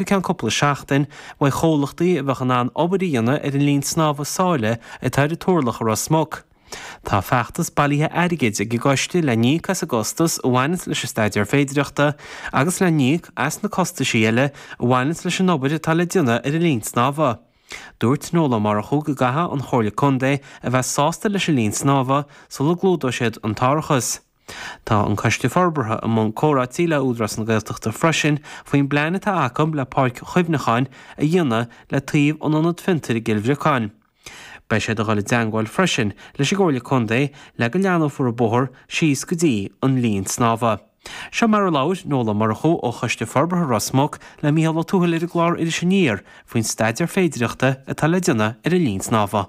go ceann cúpla seachtain, beidh comhlachtaí a bheadh in ann obair a dhéanamh ar an linn snámha sáile atá ar an Turlach i Ros Muc. Tá feachtas bailithe airgid ag an gcoiste le n-íoc as an gcostas a bhaineanns leis an staidéar féidearthachta agus le n-íoc as na costaisí eile a bhaineanns leis an obair atá le déanamh ar an linn snámha. Dúirt Noel Ó Murchú go gcaithfeadh an Chomhairle Contae a bheith sásta leis an linn snámha sula gclúdóidh siad an t-árachas. Tá an Coiste Forbartha i mbun comhráití le hÚdarás na Gaeltachta freisin faoin bplean atá acu le páirc chuimhneacháin a dhéanamh le taobh an Ionad Fiontair i gCill Bhriocáin. Beidh siad ag dul i dteangmháil freisin leis an gComhairle Contae le go leathnófar an bóthar síos go dtí an linn snámha. Seo mar a labhair Noel Ó Murchú ó Choiste Forbartha Ros Muc le Micheál Ó Tuathail ar an gclár Iris Aniar faoin staidéar féidearthachta atá le déanamh ar an linn snámha.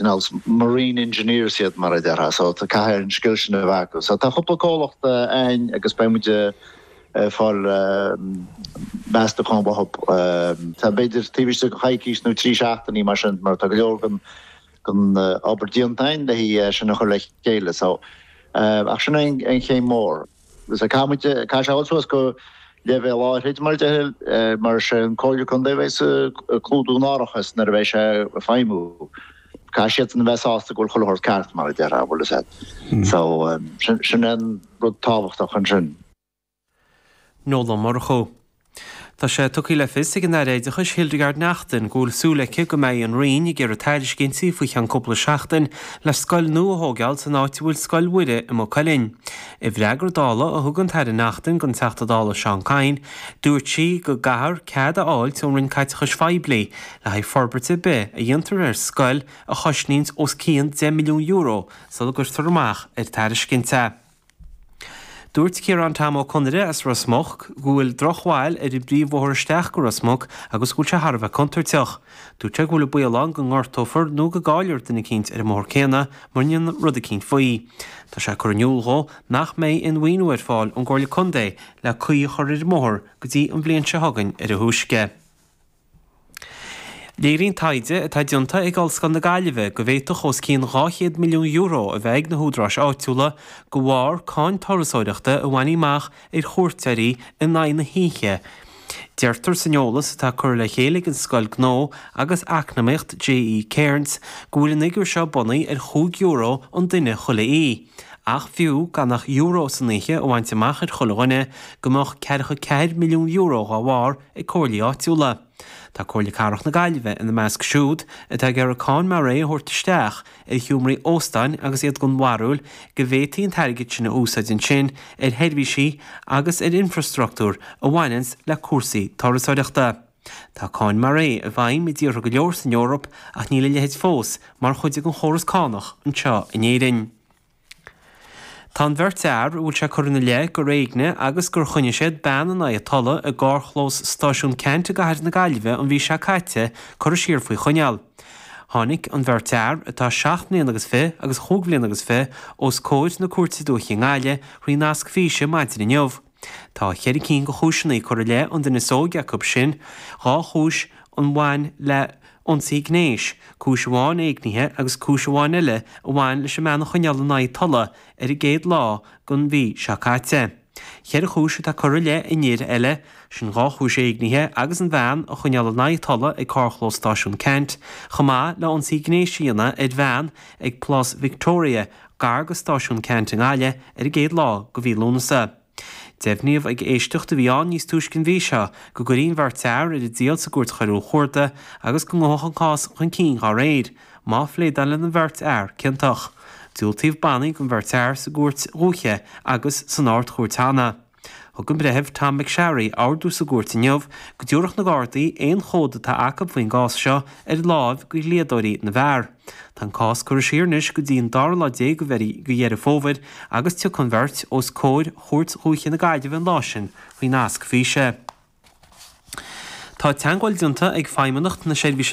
nós marine engineers iad mar a déarfá, so caithfidh an scil sin a bheith acu. So tá cúpla comhlacht a'inn agus beidh muid a' fáil meastúcháin uathab tá b'fhéidir taobh istigh de choicíos nó trí seachtainí mar sin mar tá go leor den den obair déanta a'inn le hé sin a chur le chéile so ach sin é an chéim mór. Caithfidh muid caithfidh sé a bheith suas go leibhéal áithrid, mar a déarfá, mar is é an Chomhairle Contae a bheidh ag clúdú an árachas nuair a bheidh sé ag feidhmiú. Caithfidh siad sin a bheith sásta go bhfuil chuile shórt ceart, mar a déarfá, bhuel is ea. So, sin é an rud tábhachtach ansin. Noel Ó Murchú. Tá sé tugtha le fios ag an Aire Oideachais Hildegarde Naughton go bhfuil súil aici go mbeidh an Roinn ag iarraidh tairiscintí faoi cheann cúpla seachtain le scoil nua a thógáil san áit a bhfuil Scoil Mhuire i Maigh Cuilinn. I bhfreagra Dála a thug an tAire Naughton don Teachta Dála Seán Kyne, dúirt sí go gcaithear cead a fháilt ón Roinn Caiteachais Phoiblí le haghaidh forbairt ar bith a dhéantar ar scoil a chosnaíonns os cionn €10 milliún sula gcuirtear amach ar tairiscint é. Dúirt Ciarán Tom Ó Conaire as Ros Muc go bhfuil drochbhail ar an bpríomhbhóthar isteach go Ros Muc agus go bhfuil sé thar a bheith contúirteach. Dúirt sé go bhfuil an baol ann go ngortófar nó go gcaillfear duine eicínt ar an mbóthar céanna mura ndéantar rud eicínt faoi. Tá sé curtha in iúl dhó nach mbeidh aon mhaoiniú ar fáil ón gComhairle Contae le caoi a chur ar an mbóthar go dtí an bhliain seo chugainn ar a thúisce. Léiríonn taighde atá déanta ag Ollscoil na Gaillimhe go bhféadfadh os cionn €200 milliún a bheith ag na húdaráis áitiúla de bharr cáin turasóireachta a bhaint amach ar chuairteoirí in aghaidh na hoíche, deirtear san eolas atá curtha le chéile ag an Scoil Gnó agus Eacnamaíocht JE Cairnes go bhfuil an figiúr seo bunaithe ar chúig euro an duine chuile oíche ach fiú gan ach euro san oíche a bhaint amach ar chuile dhuine go mbeadh ceathracha ceathair milliún euro dá bharr ag comhairlí áitiúla. Tá Comhairle Cathrach na Gaillimhe ina measc siúd atá ag iarraidh cáin mar é a thabhairt isteach ar sheomraí óstáin agus iad den bharúil go bhféadfaí an t-airgead sin a úsáid ansin ar sheirbhísí agus ar infreastruchtúr a bhaineanns le cúrsaí turasóireachta. Tá cáin mar é i bhfeidhm i dtíortha go leor san Eoraip ach níl a leithéid fós mar chuid den chóras cánach anseo in Éirinn. Tá an bheirt fhear a bhfuil sé curtha ina leith gur éignigh agus gur choinnigh siad bean in aghaidh a tola i gcarrchlós Stáisiún Ceannt i gcathair na Gaillimhe an mhí seo caite curtha siar faoi choinneáil. Tháinig an bheirt fhear, atá seacht mbliana agus fiche agus chúig bhliana agus fiche, os comhair na Cúirte Dúiche i nGaillimh faoi nasc físe maidin inniu. Tá ceithre cinn de chúiseanna curtha i leith an duine is óige acu sin, dhá chúis a bhain le hionsaí gnéis, cúis amháin éignithe agus cúis amháin eile a bhain leis an mbean a choinneáil in aghaidh a tola ar an gcéad lá den mhí seo caite. Ceithre chúis atá curtha i leith an fhir eile, sin dhá chúis éignithe agus an bhean a choinneáil in aghaidh a tola ag carrchlós Stáisiún Ceannt, chomh maith le hionsaí gnéis a dhéanamh ar bhean ag Plás Victoria gar do Stáisiún Ceannt i nGaillimh ar an gcéad lá de mhí Lúnasa. Deimhníodh ag éisteacht a bhí ann níos túisce an mhí seo go gcuirfí an bheirt fhear ar a dtriail sa gCúirt Choiriúil Chuarda agus go ngabhfadh an cás chun cinn dá réir, má phléadálann an bheirt fhear ciontach. Diúltaíodh bannaí don bheirt fhear sa gCúirt Dhúiche agus san Ard-Chúirt cheana. Thug an Breitheamh Tom McSharry ordú sa gcúirt inniu go dtabharfadh na Gardaí aon chomhad atá acu faoin gcás seo ar láimh do dhlíodóirí na bhfear. Tá an cás curtha siar anois go dtí an dara lá déag de Dheireadh Fómhair agus tiocfaidh an bheirt os comhair Chúirt Dhúiche na Gaillimhe an lá sin faoi nasc físe. Tá teagmháil déanta ag Feidhmeannacht na Seirbhíse